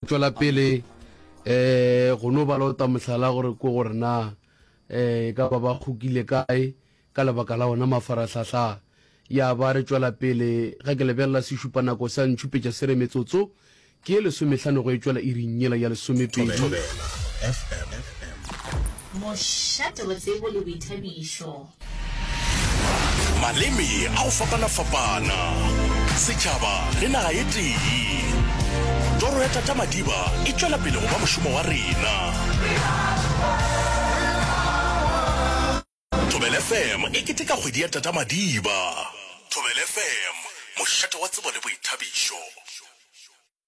tšwela pele um go no bala o ta mohlala gore ko gore na um ka ba ba kgokile kae ka lebaka la ona mafarahlahla ya ba re tšwela pele ga ke lebelela sešupanako sa ntšhupetša se re metsotso ke ye lesomehlano go e tšwela e rinnyela ya lesomepedi mošate wa tsebo le boithabišo Maleme a go fapana-fapana, setšhaba le naga e tee. Toro ya Tata Madiba e tšwela pele go ba mošomo wa rena. Thobela FM e keteka kgwedi ya Tata Madiba. Thobela FM, mošate wa tsebo le boithabišo.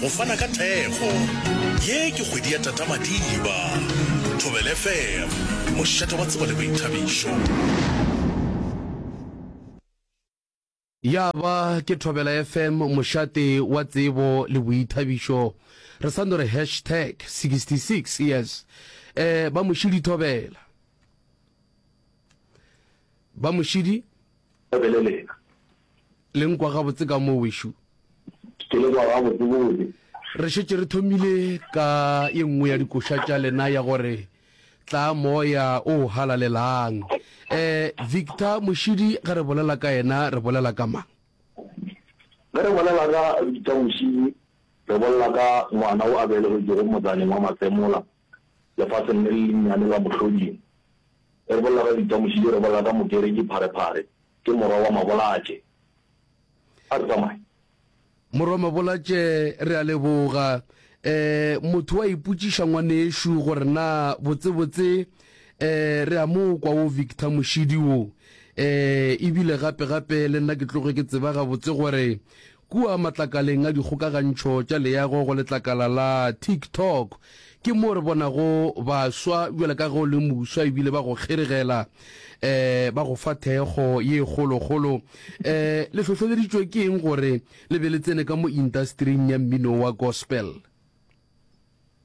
Go fana ka thekgo. Ye ke kgwedi ya Tata Madiba. Thobela FM, mošate wa tsebo le boithabišo. Ya ba ke Thobela FM, mošate wa tsebo le boithabišo. Re sa no re hashtag 66 years. Eh, ba Mošidi Thobela. Ba Mošidi. Thobele lena. Le nkwa gabotse ka mo, wešo? Ke le kwa gabotsebotse. Re šetše re thomile ka ye nngwe ya dikoša tša lena ya gore, Tla Moya o Halalelang. E, Victor Mošidi ge re bolela ka yena, re bolela ka mang? Ge re bolela ka Victor Mošidi, re bolela ka ngwana o a belegetšwego motsaneng wa Masemola, Lefaseng le le lennyane la mohloding. Re bolela ka ditamošidi, re bolela ka mokereki Pharephare, ke morwa wa Mabolatše. A re tsamaye. Morwa Mabolatše, re a leboga. Um, motho o a ipotšiša, ngwanešu, gore na botsebotse um re a mo kwa wo Victor mošidi wo? Um, e bile gape-gape le nna ke tloge ke tseba gabotse gore Kua matlakaleng a dikgokagantšho tša leago go letlakala la TikTok ke moo re bonago baswa bjalo ka ge o le moswa e bile ba go kgeregela, um ba go fa thekgo ye kgolokgolo. Um le hlohleleditšwe ke eng gore le be le tsene ka mo intastering ya mmino wa gospel?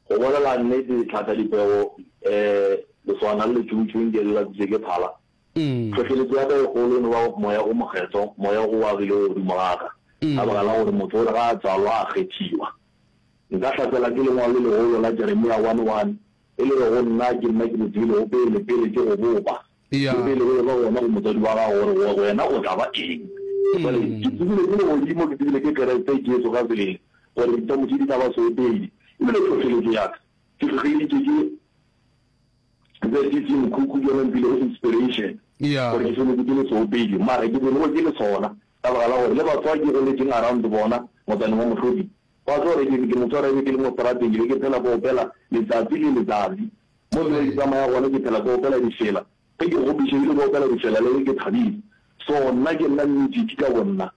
Go bolela nnete, Tlhaka Dipego, um lesogana le letšhungtšhung ke le latsitšwe ke phala, Tlhohleletšo ya ka e kgolo e no ba Moya o Mokgethwa, Moya o a bilego godimo ga ka, ka baka la gore motho o re ga a tswalwa a kgethiwa. Nka hlasela ke lengwalo le legolo la Jeremia 1, 1, e le bego nna ke nna ke le tsebilego pele, pele ke go bopa, le pele go eba gona go motswadi wa gago, gore wena o tla ba eng. Jwale, ke tsebile ke legodimo, ke tsebile ke Kriste Jesu ka sebele, gore ditšamo tše di tla ba soepedi. Ebile tlhohleletšo ya ka, ke hlohleleditšwe ke. Ze ke tše mokhukhu ke yona mpile is inspiration gore ke feletse ke le seopedi mara ke bone gore ke le sona ka baka la gore le batho ba ke goletšeng around bona motsaneng wa Mohlodi ba tlo gore ke motho wa rebe ke le mo strateng ke be ke phela ke opela letsatsi le letsatsi mo ke ke tsamaya gone ke phela ke opela difela ge ke gopiše ebile ke opela difela le ge ke thabile so nna ke nna music ka bonna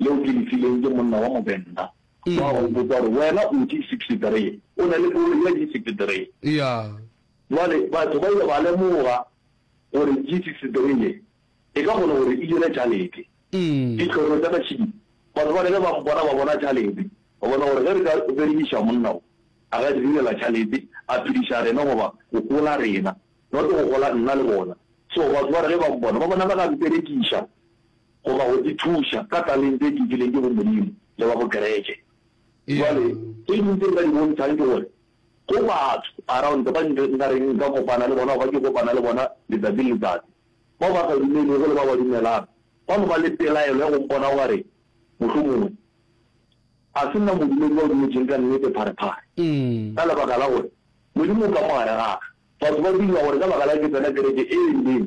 leo ke le fileng ke monna wa Movenda wa go mpotsa gore wena o di 63 o na le koloi ya di 63. Yeah. Jwale batho ba ile ba lemoga gore di 63 ye e ka kgona gore e dire tšhalete. Ditlhoko tša ka tšhidi batho ba ne ge ba mpona ba bona tšhalete ba bona gore ge re ka berekiša monna o a ka di direla tšhalete a phediša rena goba go gola rena not go gola nna le bona so batho ba re ge ba mpona ba bona ba ka mperekiša. Goba go ithuša ka talente ye ke e fileng ke go Modimo le wa bokeretše. Bjale, tše ding tše nka di bontšhang ke gore go batho around ba nka reng nka kopana le bona goba ke kopana le bona letsatsi le letsatsi, bao ba sa dumelego le bao ba dumelago, ba no ba le pelaelo ya go mpona o ka re mohlomongwe ga se nna modumedi wa dumetšeng ka nnete pharephare, ka lebaka la gore Modimo o ka mo gare ga ka. Batho ba dumela gore ka baka la ke tsena kereke e e rileng,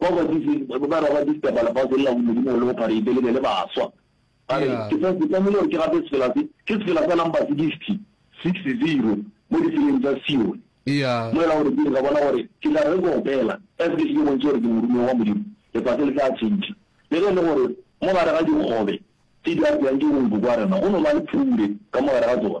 Bao ba dutše ba raba ditaba la fase le la godimo le go phareitse le be le baswa. Ba re, Ke sa, ke tlamehile gore ke gape sefela se, ke sefela sa number sixty, six zero, mo ditseleng tsa Sione. Mo e la gore ke re ka bona gore ke tla re ke opela, as ke se ke bontšhe gore ke morumiwa wa Modimo, lefase le tla tšhentšha. Le ge e le gore mo gare ga dikgobe tše di apewang ke bonkoko wa rena go no ba le phure ka mo gare ga tsona,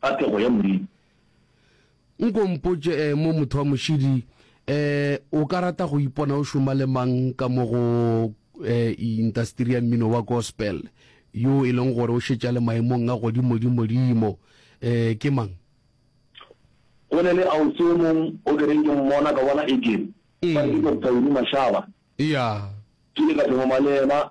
Ka pego ya Modimo. Nko mpotše eh, mo motho wa mošidi eh, o ka rata go ipona o šoma le mang ka mo go eh, intasteri ya mmino wa gospel yo e leng gore o šetša le maemong a godimodimodimo eh, ke mang? Go ne le ausi yo mong o ke reng ke mmona ka bona e ke ba re ke Doctor Winnie Mashaba. Yeah. Ke ile ka phemama le yena